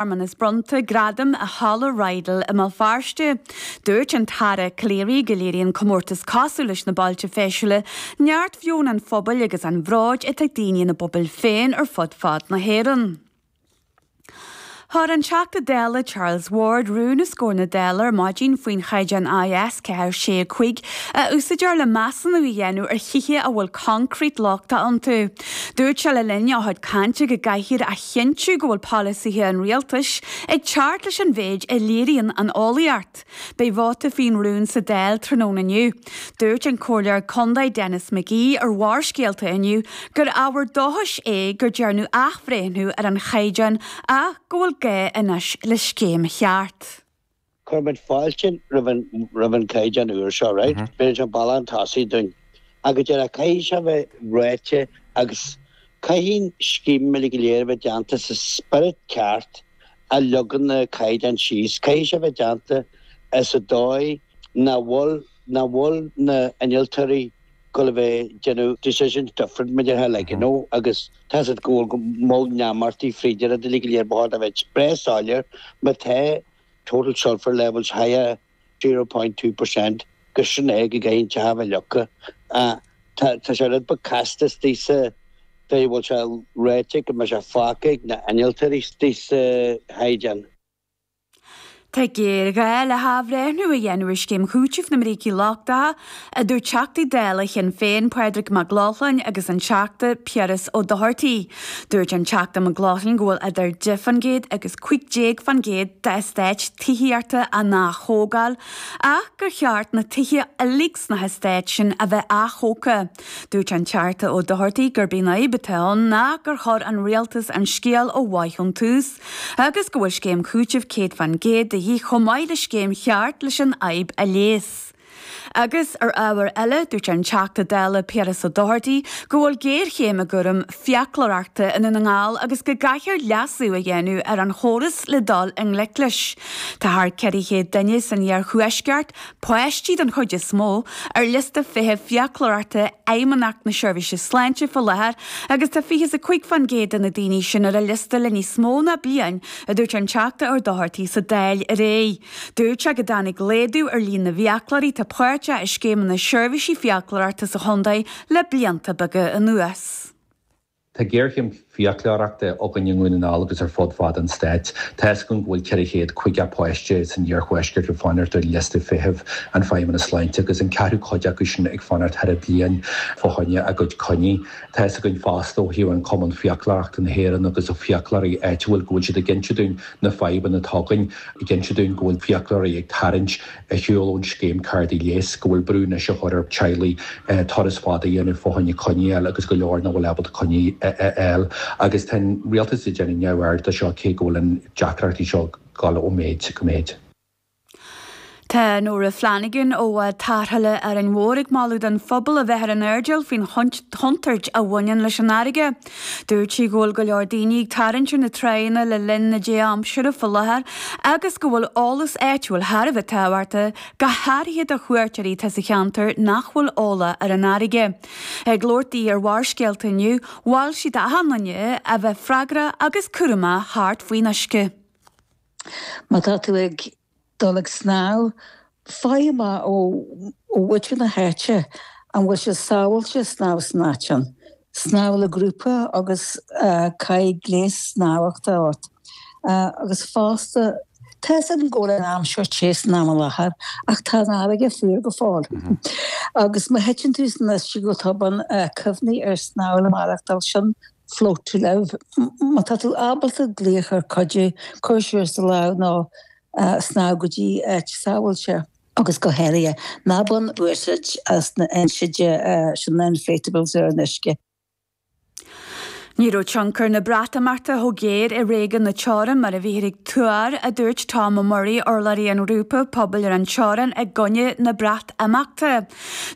searmanas bronnta gradaim i Halla Riddel i mBéal Feirste. Dúirt an tAire Calleary go léiríonn comórtas cosúil leis na Bailte Feisiúla neart mheon an phobail agus an bhróid atá ag daoine ina bpobail féin ar fud fad na hÉireann. Chuir an Teachta Dála Charles Ward rún os comhair na Dála ar maidin faoin chaighdeán IS 4 6 5 a úsáidtear le measúnú a dhéanamh ar thithe a bhfuil concrete lochtach iontu. Dúirt sé le linn a chuid cainte go gcaithfear a chinntiú go bhfuil polasaithe an rialtais ag teacht leis an mhéid a léiríonn an eolaíocht. Beidh vóta faoin rún sa Dáil tráthnóna inniu. Dúirt an Comhairleoir Contae Denis McGee ar Bharrscéalta inniu gur ábhar dóchais é gur dearnadh athbhreithniú ar an chaighdeán ach go bhfuil gá anois le scéim cheart. Cuirimid fáilte roimh an chaighdeán úr seo. But an bealach chun tosaigh dúinn. Agus deirtear caithfidh sé a bheith ráite agus caithfidh an scéim uilig go léir a bheith déanta sa spiorad ceart a leagann an caighdeán síos. Caithfidh sé a bheith déanta i sa dóigh nach bhfuil nach bhfuil na hinnealtóirí ag gabháil a bheith déanamh decisions different mar a déarfá like you know agus tá a fhios agat go bhfuil uniformity fríd an rud uilig go léir ba chóir a bheith breá soiléir má tá total sulphur levels higher 0.2 percent go sin é go gcaithfidh an teach a bheith leagtha. Tá tá sé rud beag casta istigh sa dóigh a bhfuil sé ráite go mbeidh sé fágtha ag na hinnealtóirí istigh sa chaighdeán. Tá géarghá le hathbhreithniú a dhéanamh ar scéim chúitimh na mbrící lochtacha a dúirt Teachtaí Dála Shinn Féin Pádraig Mac Lochlainn agus an Teachta Piaras Ó Dochartaigh. Dúirt an Teachta Mac Lochlainn go bhfuil idir 10 fán gcéad agus 15 fán gcéad d'eastáit tithíochta á n-athógáil ach gur cheart na tithe uilig sna heastáit sin a bheith athógtha. Dúirt an Teachta Ó Dochartaigh gurb í an fhadhb atá ann ná gur chuir an Rialtas an scéal ó mhaith ón tús agus go bhfuil scéim chúitimh 100 fán gcéad de dhíth chomh maith le scéim cheart leis an fhadhb a leigheas. Agus ar ábhar eile, dúirt an Teachta Dála Piaras Ó Dochartaigh go bhfuil géarchéim i gcúram fiaclóireachta i nDún na nGall agus go gcaithfear leasú a dhéanamh ar an chóras le dul i ngleic leis. Tá thar 400 duine san iarthuaisceart, páistí den chuid is mó, ar liosta feithimh fiaclóireachta Fheidhmeannacht na Seirbhíse Sláinte faoi láthair agus tá fiche is a cúig fán gcéad de na daoine sin ar an liosta le níos mó ná bliain, a dúirt an Teachta Ó Dochartaigh sa Dáil aréir. Dúirt sé go dtáinig laghdú ar líon na bhfiaclóirí atá páirteach i scéimeanna seirbhísí fiaclóireachta sa chontae le blianta beaga anuas. Tá géarchéim fiaclóireachta againn i nDún na nGall agus ar fud fad an stáit. Tá's againn go bhfuil 450 páiste san iarthuaisceart ag fanacht ar liosta feithimh an Feidhmeannas Sláinte agus an ceathrú cuid acu sin ag fanacht thar bliain fá choinne a gcuid coinní. Tá's againn fosta ó thaobh an Cumann Fiaclóireachta na hÉireann agus ó fiaclóirí áitiúil go bhfuil siad ag inse dúinn na fadhbanna atá againn. ag inse dúinn go bhfuil fiaclóirí ag tarraingt ar shiúl ón scéim cártaí leighis, go bhfuil brú anois á chur ar teaghlaigh turas fada a dhéanamh fá choinne coinní a fháil agus go leor nach bhfuil ábalta coinní a fháil. Agus tá an rialtas ag déanamh neamhaird de seo cé go bhfuil an deacrachtaí seo ag dul ó mhéid go méid. Tá Nora Flanagan ó Bhád Tarrthála Árainn Mhór, ag moladh don phobal a bheith ar an airdeall faoin chontúirt a bhaineann leis an fharraige. Dúirt sí go bhfuil go leor daoine ag tarraingt ar na tráigheanna le linn na dea-aimsire faoi láthair agus go bhfuil eolas áitiúil thar a bheith tábhachta, go háirithe do chuairteoirí atá sa cheantar nach bhfuil eolach ar an fharraige. Ag labhairt di ar Bharrscéalta inniu, mhol sí d'achan duine a bheith freagrach agus cúramach thart faoin uisce. Má tá tú ag. dul ag snámh, faigh amach ó mhuintir na háite an bhfuil sé sábháilte snámh san áit sin, snámh le grúpa agus caith gléas snámhachta ort, agus fosta, Tá's agam go bhfuil an aimsir te san am i láthair, ach tá an fharraige fuar go fóill, agus má thiteann tú san uisce go tobann, cuimhnigh ar snámh le maireachtáil, sin Float to Live, Má tá tú ábalta glaoch ar cuidiú, cuir suas do lámh nó snámh go dtí áit sábháilte. Agus go háirithe, ná bain úsáid as na hinséidte sin, na inflatables ar an uisce. Ní raibh tionchar na Breatimeachta chomh géar i réigiún na teorann mar a bhíthear ag tuar, a dúirt Tom Murray, urlabhraí an Ghrúpa Pobail ar an Teorainn i gcoinne na. imeachta.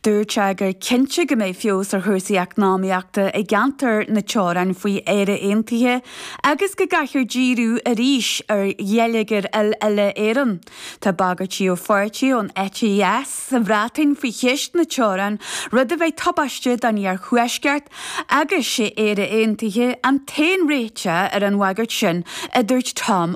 Dúirt sé gur cinnte go mbeidh feabhas ar chúrsaí eacnamaíochta i gceantar na teorann faoi Éire Aontaithe agus go gcaithfear díriú arís ar gheilleagar uile-Éireann. Tá bagairtí ó pháirtithe ón eite dheis sa Bhreatain faoi cheist na teorann, rud a bheidh tubaisteach don iarthuaisceart agus sé Éire Aontaithe an t-aon réiteach ar an bhagairt sin, a dúirt Tom